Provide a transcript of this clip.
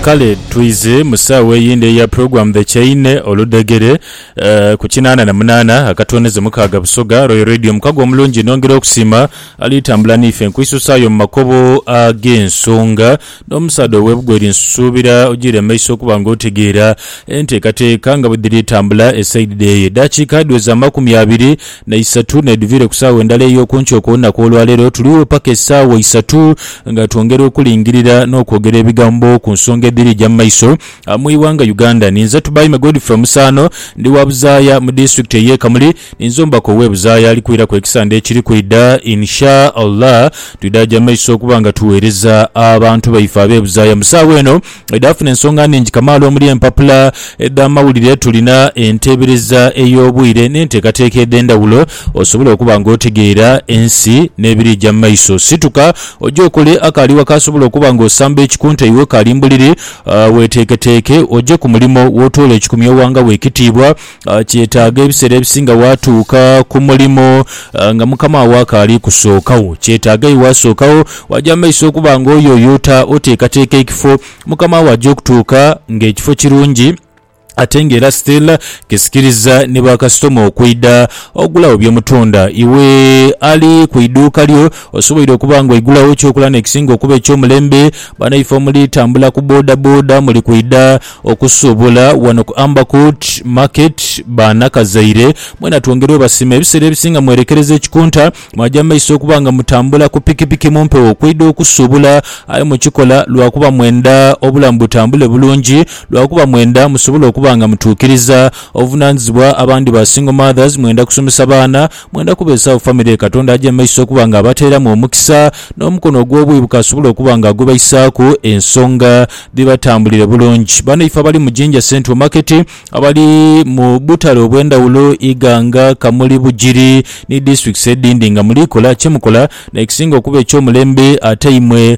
Kale twidhe mu saagho eyindi eya Program The Chain, Oludhegere, eh, ku kinaana na munaana akatonezo mukaaga Busoga, Royal Radio mukago omulungi nongera okusiima ali tambula niife nkwisusaayo mu makobo ag'ensonga n'omusaadha ow'ebugweri nsuubira ojiire maiso okuba nga otegeera enteekateeka nga bwedhiri tambula esaidide eyo edaakiika dhiweza amakumi abiri na isatu n'edhuviire ku saawa endala ey'oku nkyo okw'olunaku olwaleero. Tuliwo paka esaawa isatu nga twongera okulingirira n'okwogera ebigambo ku nsonga edhiri eja mu maiso mu ighanga Uganda. Ninze Tubaime Godfrey Musaano, ndi wa Buzaaya mu Disitulikiti ey'e Kamuli. Ninze omubaka ow'e Buzaaya alikwiraku ekisande ekiri kwidha. In Sha Allah, twidhaaja mu maiso okuba nga tugheereza abantu baife ab'e Buzaaya mu saawa eno edhafuna ensonga nnhingi kamaala omuli empapula edh'amawulire. Tulina enteebereza ey'obwire n'enteekateeka edh'endhawulo osobole okuba ng'otegeera ensi n'ebiriija mu maiso. Situka oje okole akaali waka asobola okuba ng'osamba ekikunta iwe kaali mbuliri. Weeteeketeeke oje ku mulimo w'otoola ekikumya owangawo ekitiibwa. Kyetaaga ebiseera ebisinga waatuuka ku mulimo nga mukama wo akaali kusookagho. Kyetaaga aye waasookagho waaja mu maiso okuba ng'oyooya ota oteekateeka ekifo mukama wo aja okutuuka ng'ekifo kirungi ate ng'era still kisikiriza ni bakasitoma okwidha ogulagho bye mutunda. Iwe ali ku idhuuka lyo osoboire okuba ng'oigulagho ekyokulya n'ekisinga okuba eky'omulembe. Banaife omuli tambula ku bodaboda muli kwidha Okusuubula wano ku Ambercourt Market banakazaire mwena twongere obasima ebiseera ebisinga mwerekereza ekikunta mwaja mu maiso okuba nga mutambula ku pikipiki mu mpewo kweidha okusuubula aye mukikola lwakuba mwenda obulamu butambule bulungi lwakuba mwenda musobole okuba nga mutuukiriza obuvunanizibwa abandi ba single mothers mwenda kusomesa baana Mwenda kubeezagho famire ye Katonda aja mu maiso okuba nga abateeramu omukisa n'omukono ogw'obwibuka asobole okuba nga agubaisaaku ensonga dhibatambulire bulungi. Banaife abali mu Jinja Central Market, abali mu butale obw'endhawulo, Iganga, Kamuli, Bugiri ni disiturikiti edhindi nga muliikola kye mukola n'ekisinga okuba eky'omulembe ate imwe